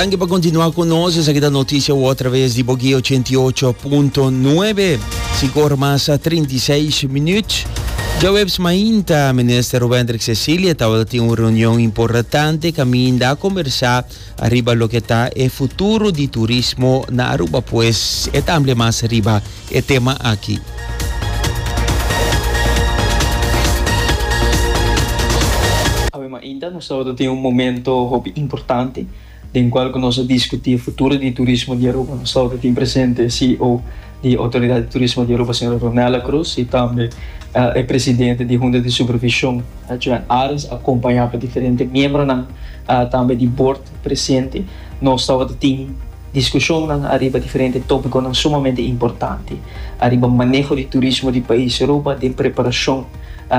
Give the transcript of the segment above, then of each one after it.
Danki pa kontinua ku nos. Esaki ta Notisia Word traves di Bogué 88.9. Sikor mas 36 minut. Djaweps mainta, minister Wendrik Cecilia tabata tin un reunion importante kaminda a kombersá riba loke ta e futuro di turismo na Aruba. Pues e ta ampliá mas riba. e tema aki. Awe mainta nos tabata tin un momento hopi importante den cual cu nos a discuti e futuro di turismo di Aruba. Nos tabata tin presente e CEO di Autoridad di Turismo di Aruba, señora Ronella Cruz, y tambe e presidente di Hunta di Supervision, Joan Arens, acompaña pa diferente miembronan tambe di bord presente. Nos tabata tin. Diskushonnan ariba diferente tópikonan sumamente importante ariba maneho di turismo di pais Aruba den preparashon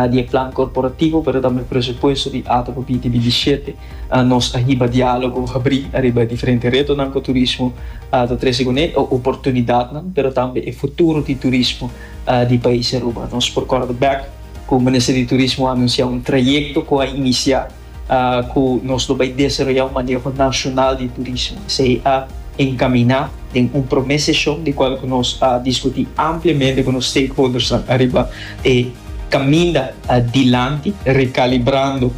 di e plan korporativo pero tambe presupuesto di Ata pa binti binti shete. Nos a hiba diálogo habrí ariba e diferente retonan ku turismo ta trese kuné, e oportunidatnan pero tambe e futuro di turismo di pais Aruba. Nos por kòrda bèk ku Minister di Turismo a anunsiá un trayekto ku a inisiá. ku nos lo bai desaroyá un maneho nashonal di turismo. Esei a enkaminá den un promé seshon di kual ku nos a diskutí ampliamente ku nos stakeholdersnan ariba e kaminda dilanti, rekalibrando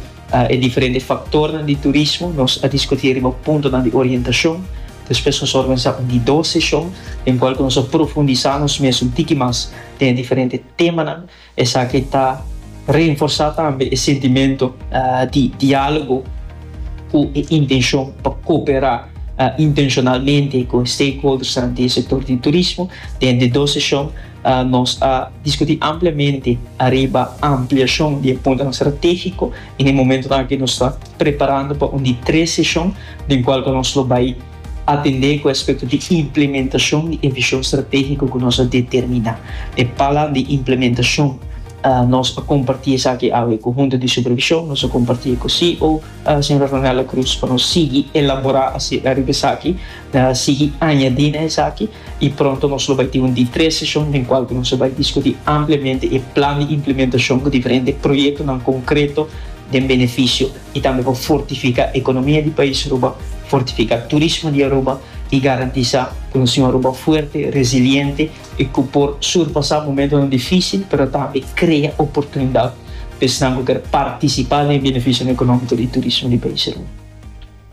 e diferente faktornan di turismo. Nos a diskutí ariba puntonan di orientashon. Despues nos a organisá un di dos seshon den kual ku nos a profundisá nos mes un tiki mas den e diferente temanan. Esaki ta reenforsá tambe e sentimento di diálogo ku e intenshon pa kooperá intenshonalmente ku e stakeholdersnan di e sektor di turismo. Den e dos seshon nos a diskutí ampliamente ariba ampliashon di e puntonan stratégiko. En e momentonan aki nos ta preparando pa un di tres seshon den kual ku nos lo bai Atendé ku aspekto di implementashon di e vishon stratégiko ku nos a determiná. E palan di implementashon, Nos a kompartí esaki awe ku Hunta di Supervishon, nos a kompartí e ku CEO, señora Ronella Cruz, pa nos sigui elaborá riba esaki, sigui añadí na esaki, i pronto nos lo bai tin un di tres seshon den kual ku nos a bai diskutí ampliamente e plan di implementashon ku diferente proyektonan konkreto den benefisio y tambe pa fortifica economia di pais Aruba, fortifica turismo di Aruba y garantisa cu nos nacion Aruba fuerte, resiliente y cu por surpasa momentonan dificil pero tambe crea oportunidad pa esnan cu ker participa den e beneficionan economico di turismo di pais Aruba.